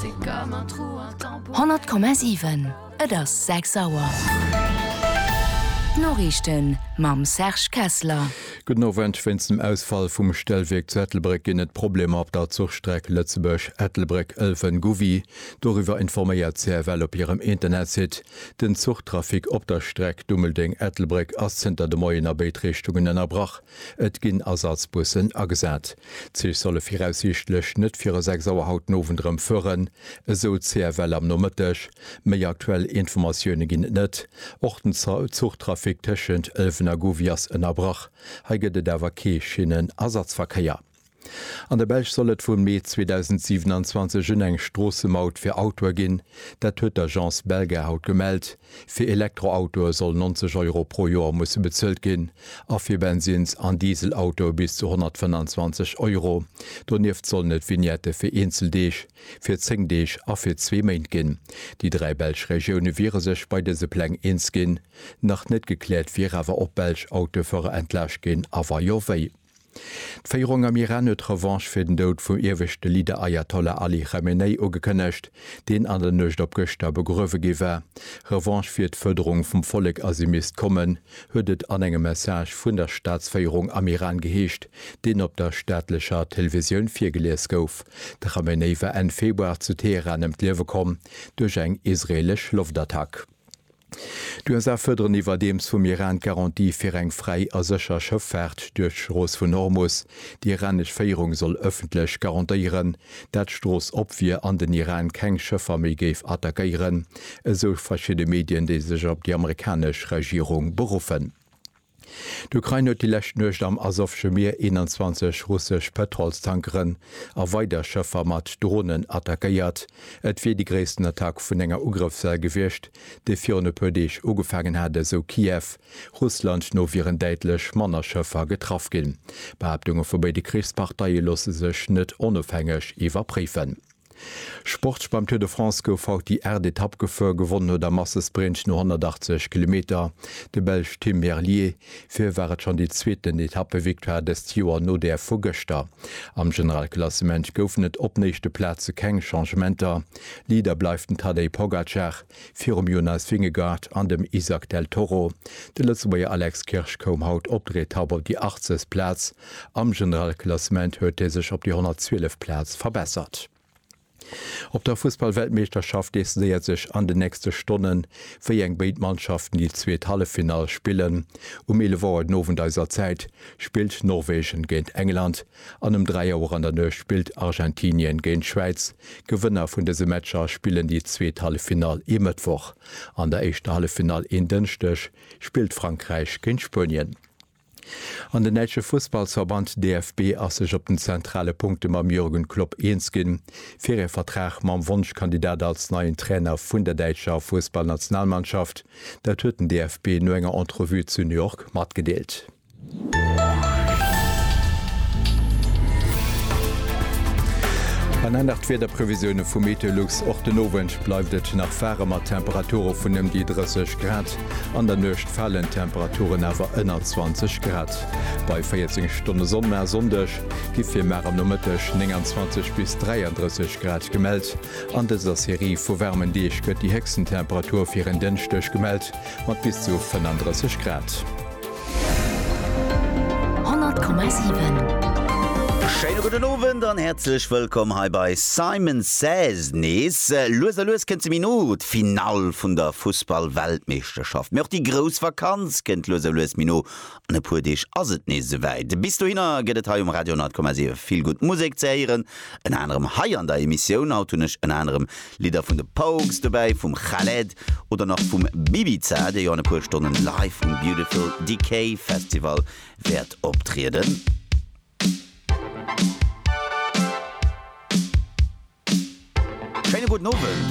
100,7 Et ass 6 Auer. D'Noriichten mam Serge Kessler. Gudden Owend. Wéinst dem Ausfall vum Stellwierk zu Ettelbréck ginn et Problemer op der Zuchstreck Lëtzebuerg, Ettelbréck, Ëlwen, Gouvy. Doriwwer informéiert d'CFL op hirem Internetsite. Den Zuchtrafic op der Streck Dummeldeng, Ettelbréck ass zënter de Moien a béid Richtungen ënnerbrach. Et ginn Ersatzbussen agesat. D'Zich solle viraussiichtlech net viru 6 Auer haut den Owend erëm fueren, esou d'CFL am Nomëtteg. Méi aktuell Informatioune ginn et net. Och den Zuchtrafic tëschent Ëlwen a Gouvy ass ënnerbrach. Hei gëtt et awer kee Schinnenersatzverkéier. An der Belsch soll et vum Mee 2027 un eng Stroossemaut fir Autoe ginn. Dat huet d'Agence Belga haut gemellt. Fir Elektroautoe sollen 90 Euro pro Joer musse bezuelt ginn a fir Bensins an Dieselautoe bis zu 125 Euro. Donieft sollen et Vignette fir eenzel Deeg, fir 10 Deeg a fir zwee Méint ginn. Déi dräi belsch Regioune wiere sech bei dëse Pläng eens ginn. Nach net gekläert wier awer, ob belsch Autofuerer entlaascht ginn a wa jo, wéi. D'Féierung am Iran huet Revanche fir den Doud vum ieweschte Leader Ayatollah Ali Chamenei ugekënnegt, deen an der Nuecht op gëschter begruewe gi war. Revanche wier d'Fuerderung vum Vollek a se misst kommen, huet et an engem Message vun der Staatsféierung am Iran geheescht, deen op der staatlecher Televisioun virgelies gouf. De Chamenei war Enn Februar zu Teheran ëm d'Liewe komm duerch eng israeelesch Loftattack. D'USA fërderen iwwerdeems vum Iran d'Garantie fir eng fräi a sécher Schëffaart duerch d'Strooss vun Hormus. Déi iranesch Féierung soll ëffentlech garantéieren, dat d'Strooss op wier an den Iran keng Schëffer méi géif attackéieren, esou verschidde Medien, déi sech op déi amerikanesch Regierung beruffen. D'Ukrain huet déi lescht Nuecht am Asowsche Mier 21 russesch Pëtrolstankeren a weider Schëffer mat Dronen attackéiert. Et wier déi gréissten Attack vun enger Ugrëffswell gewiescht, déi virun e puer Deeg ugefaangen hat, esou Kiew. Russland no wieren däitlech manner Schëffer getraff ginn. D'Behaaptunge vu béide Krichsparteie loosse sech net onofhängeg iwwerpréifen. Sportsch Beim Tour de France gouf haut déi aacht Etapp gefouer. Gewonnen huet am Massesprint no 180 Kilometer de Belsch Tim Merlier. Fir hie war et schonn déi zweeten Etappevictoire dëst Joer no där vu gëschter. Am Generalklassement goufen et op néischte Plaze keng Changementer. Leader bleift den Tadej Pogacar. Virum Jonas Vingegaard an dem Izack Del Toro, de Lëtzebuerger Alex Kirsch koum haut op der Etapp op déi 80. Plaz. Am Generalklassement huet hie sech op déi 112. Plaz verbessert. Op der Fussballweltmeeschterschaft decidéiert sech an den nächste Stonne wéi eng béid Mannschaften déi zweet Halleffinall spillen. Um 11 Auer den Owend eiser Zäit spillt Norwegen géint England. An um 3 Auer an der Nuecht spillt Argentinien géint d'Schwäiz. D'Gewënner vun dëse Matcher spillen déi zweet Halleffinall ee Mëttwoch. An der éischter Halleffinall een Dënschdeg spillt Frankräich géint Spuenien. An den däitsche Fussballsverband DFB ass sech op den zentrale Punkte mam Jürgen Klopp eens ginn, fir ee Vertrag mam Wonschkandidat als neien Trainer vun der däitscher Fussballnationalmannschaft. Dat huet den DFB no enger Entrevue zu New York matgedeelt. An aner d'Wiederprevisioune vu Meteolux, Och den Owend bleift et nach waarem mat Temperature vun ëm déi 30 Grad. An der Nuecht falen d'Temperaturen awer ënner 20 Grad. Bei 14 Stonne Sonn, mä e Sonndeg gi fir mar am Nomëtteg 29 bis 33 Grad gemellt. An dëser Serie vu waarmen Deeg gëtt déi héchsten Temperatur fir en Dënschdeg gemellt. Mat bis zu 35 Grad. 100,7. Schéine gudden Owend an häerzlech wëllkomm hei bei Simon Says nees. Lues a lues kënnt se méi no, d'Finall vun der Fussball-Weltmeeschterschaft, mee och déi grouss Vakanz kënnt lues a lues méi no An e puer Deeg ass et nees esouwäit. Bis dohinner gëtt et hei um Radio 10,7 vill gutt Musek ze héieren. Ënner anerem hei an der Emissioun. Haut hunn ech ënner anerem Lidder vun de Pogues dobäi, vum Khaled oder nach vum Bibiza, dee jo an e puer Stonnen live um Beautiful Decay Festival wäert optrieden. Schéine gudden Owend.